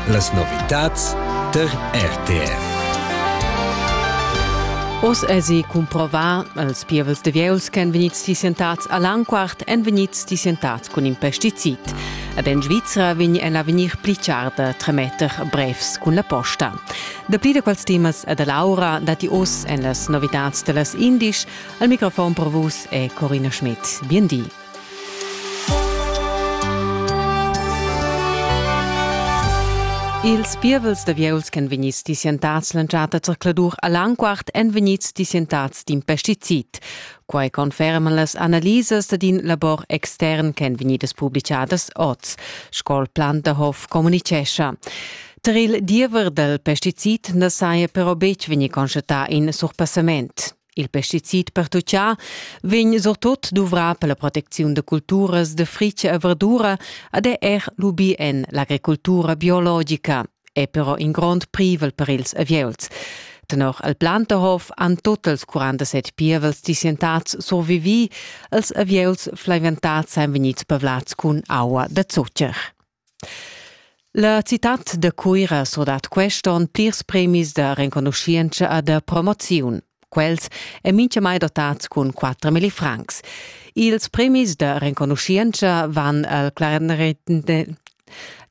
Las novitads tar RTR. Oz èsi cumprovà, els pievels de vieus ch'èn vegnids tissientads a Lanquart èn vegnids tissientads cun in pesticid. Ed en Svizra vegn el a vegnir pli char da tremetter brevs cun la posta. Dapli da quels temas e da Laura datti oz en las novitads da las indisch. Al microfon per vus è Corina Schmidt. Bien di. Ils pievels d'avieuls ch'en vegnids dissientads l'entschatta zercladur a Langquart èn vegnids dissientads d'in pesticid. Quai conferman las analisas dad in labor extern ch'èn vegnidas publitgadas oz, sco Planterhof communitgescha. Tar il diever dal pesticid na saja però betg vegnì constatà in surpassament. Il pesticid pertuchà vegn surtut duvrà per la protecziun da culturas da fritg e verdura ed è er lubì en l'agricultura biologica, è però in grond privel per ils avieuls. Tenor el Planterhof han tot els 47 pievels disientats survivì, els avieuls flaiventats èn vegnids pavlads cun aua da zucher. La citad da Cuira surdat quest onn plirs premis da renconuschientscha e da promoziun. Quels èn mintgamai dotads cun 4.000 francs. Ils premis da renconuschientscha van al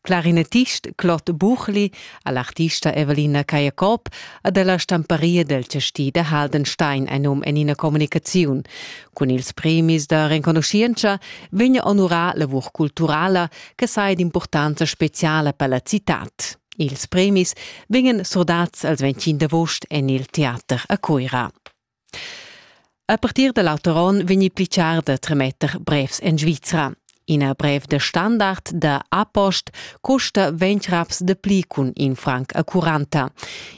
clarinetist Claude Buchli, all'artista Evelina Cajacob ed alla stamparia dal chastì da Haldenstein ein um en ina communicaziun. Cun ils premis da renconuschientscha vegn onurà lavur culturala che sai d'impurtanza speciala per la citad. Ils premis vegnan surdads als 25 d'agost en il teater a Cuira. A partir da l'auter onn vegni pli char da tremetter brevs en Svizra. Ina brev de standard da apost custa ventg raps de pli cun in franc a curanta.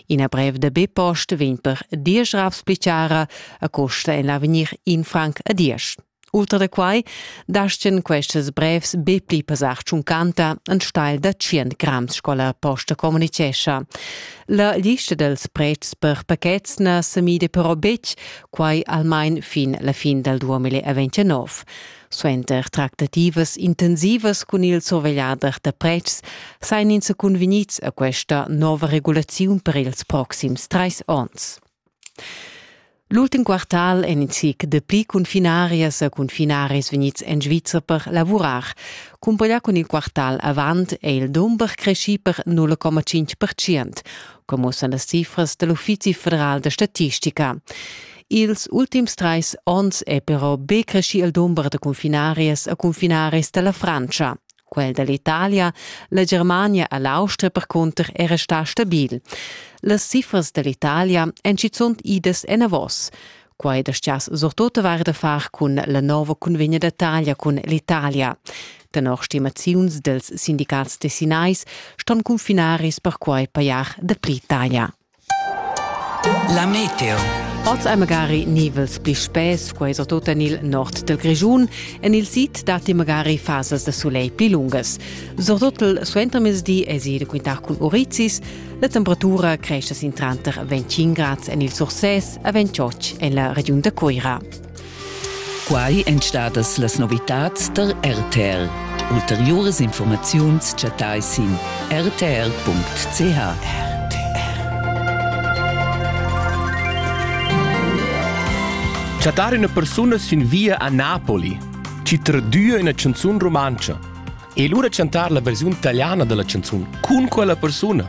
Ina brev de bipost vegn per diesch raps pli cara a costa en l'avegnir in franc a diesch. Ultra da quai dastgen questas brevs be pli pesar tschuncanta en steil da 100 grams sco la posta communicescha. La lista dels pretschs per pakets na semide però betg quai almain fin la fin dal 2029. Suenter tractativas intensivas cun il survegliader da pretschs sain ins cunvegnids a questa nova regulaziun per ils proxims trais onns. L'ultim quartal en in zic dapli confinarias e confinaris vegnids en Svizra per lavurar. Cumpaglià cun il quartal avant è il dumber creschì per 0,5 percent, come mussano las cifras dell'Uffizi federal da statistica. Ils ultims trais onns è però be creschì il dumber da confinarias e confinaris da la Frantscha. Quel da l'Italia, la Germania e l'Austria percunter è restà stabil. Las cifras da l'Italia èn schizunt idas enavos. Quai dastgias surtut avair da far cun la nova cunvegna da taglia cun l'Italia. Tenor stimaziuns dels sindicats tessinais ston confinaris perquai pajar dapli taglia. La meteo. Oz ei magari nivels pli spess, quei so tut en il nord del Grischun. En il sid datti magari fasas da soleil pli lungas. Surtut il suentermezdi esi da quintar cun urizis. La temperatura cresce sin tranter 25 grads en il Surses e 28 en la regiun da Cuira. Quai èn stadas las novitads tar RTR. Ulteriuras informaziuns chattai sin rtr.ch. Chattar üna persuna sin via a Napoli, chi tradüa üna canzun rumantscha e lura chantar la versiun italiana della canzun cun quella persuna